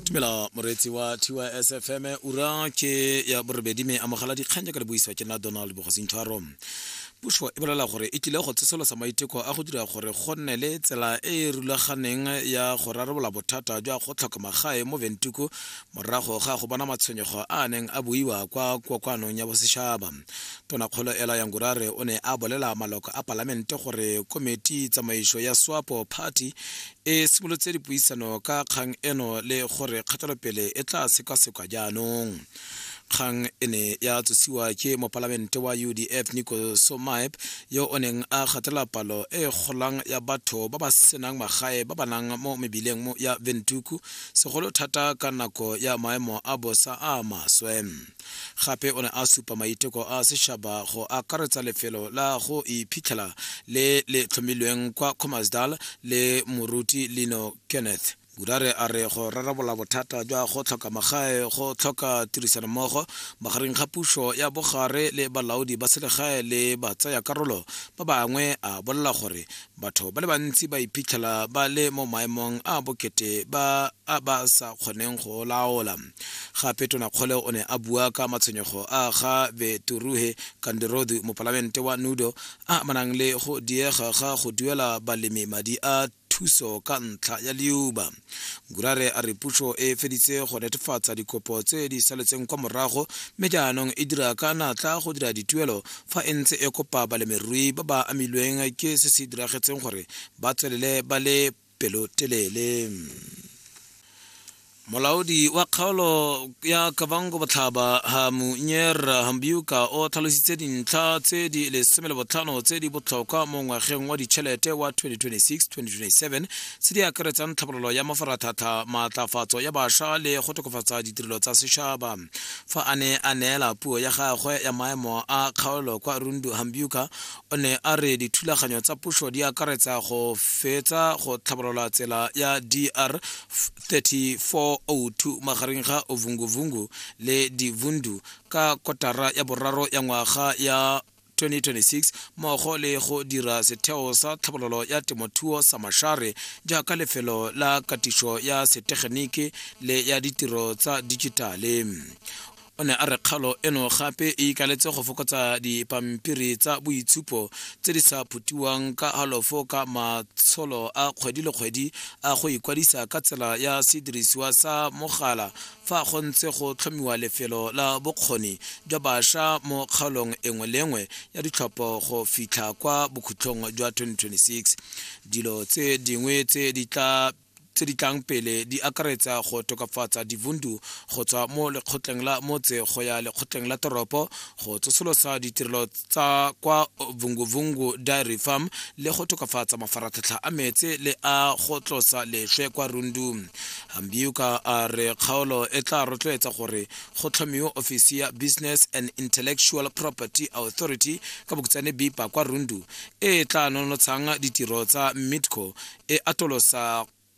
tumela moreetsi wa tys fm ura ke ya borobedi me amogela dikgang jaaka le buisiwa ke nna donald bogosintshwaro puso e bolela gore e tlile go tsosolosa maiteko a go dira gore go nne le tsela e e rulaganeng ya go rarabolola bothata jwa go tlhoka magae mo ventuku morago ga go bona matshwenyego a a neng a buiwa kwa kokoanong ya bosetšhaba tonakgolo ela yangurare o ne a bolela maloko a palamente gore komiti tsamaiso ya swapo party e simolotse dipuisano ka kgang eno le gore kgatelopele e tla sekwasekwa jaanong kgang e ne ya tsosiwa ke mopalamente wa udf nico somaep yo o neng a gatela palo e golang ya batho ba ba senang magae ba ba nang mo mebileng mo- ya ventuku segolo thata ka nako ya maemo a bosa a maswe gape o ne a supa maiteko a setšhaba go akaretsa lefelo la go iphitlhela le le tlhomilweng kwa comasdal le moruti lino kenneth gudare a re go rarabola bothata jwa go tlhoka magae go tlhoka tirisanommogo magareng ga puso ya bogare le balaodi ba selegae le batsaya karolo ba bangwe a bolela gore batho ba le bantsi ba iphitlhela ba le mo maemong a bokete ba a ba sa kgoneng go laola gape tonakgole o ne a bua ka matshwenyego a ga beturuhe kandirodu mopalamente wa nudo a amanang le go diega ga go duela balemi madi a thuso ka ntlha ya liuba gurare a re puso e feditse go netefatsa dikopo tse di saletseng kwa morago mme jaanong e dira ka natla go dira dituelo fa e ntse e kopa balemirui ba ba amilweng ke se se diragetseng gore ba tswelele ba le pelotelele molaodi wa kgaolo ya kabango botlhaba hamunyer hambiuka o tlhalositse dintlha tse di lesome le botlhano tse di botlhokwa mo ngwageng wa ditšhelete wa 2026 2027 tse di akaretsang tlhabololo ya mafaratlhatlha maatlafatso ya bašwa le go tokafatsa ditirelo tsa setšhaba fa a ne a neela puo ya gagwe ya maemo a kgaolo kwa rundu hambuka o ne a re dithulaganyo tsa puso di akaretsa go fetsa go tlhabolola tsela ya dr 3402 magareng ga ovunguvungu le divundu ka kotara ya boraro ya ngwaga ya 2026 mmogo le go dira setheo sa tlhabololo ya temothuo sa mashare jaaka lefelo la katiso ya setegeniki le ya ditiro tsa dijitale o ne a re kgalo eno gape e ikaletse go fokotsa dipampiri tsa boitshupo tse di sa phutiwang ka halofo ka matsholo a kgwedi le kgwedi a go ikwadisa ka tsela ya sedirisiwa sa mogala Fa go ntse go tlhomiwa lefelo la bokgoni jwa basha mo kgaolong engwe le engwe ya ditlhopho go fitlha kwa bokhutlhong jwa 2026, dilo tse dingwe tse di tla tse di tlang pele di akaretsa go tokafatsa divundu go tswa mo lekgotleng la motse go ya lekgotleng la toropo, go tsosolosa ditirelo tsa kwa vunguvungu dairy farm le go tokafatsa mafaratlhatlha a metse le a go tlosa leswe kwa rundu hambiuka a re kgaolo e tla rotloetsa gore go tlhomiwe ofisi ya business and intellectual property authority ka bokutsane bipa kwa rundu e tla nonotshang ditiro tsa midco e atolosa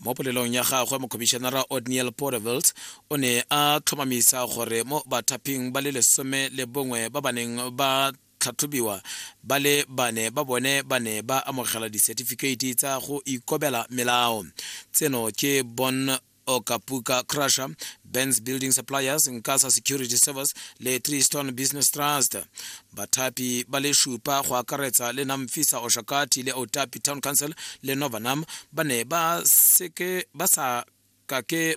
mo polelong ya gagwe mokhomišenara odniel porevelt o ne a tlhomamisa gore mo bathaphing ba le lesome le bongwe ba ba neng ba tlhatlhobiwa ba le bane ba bone ba ne ba amogela disetifikeiti tsa go ikobela melao tseno ke bon okapuka crusher bens building suppliers nkasa security service le tree stone business trust Bathapi ba le šupa go akaretsa le Namfisa Oshakati le Otapi Town Council le Novanam ba ne ba seke ba sa ka ke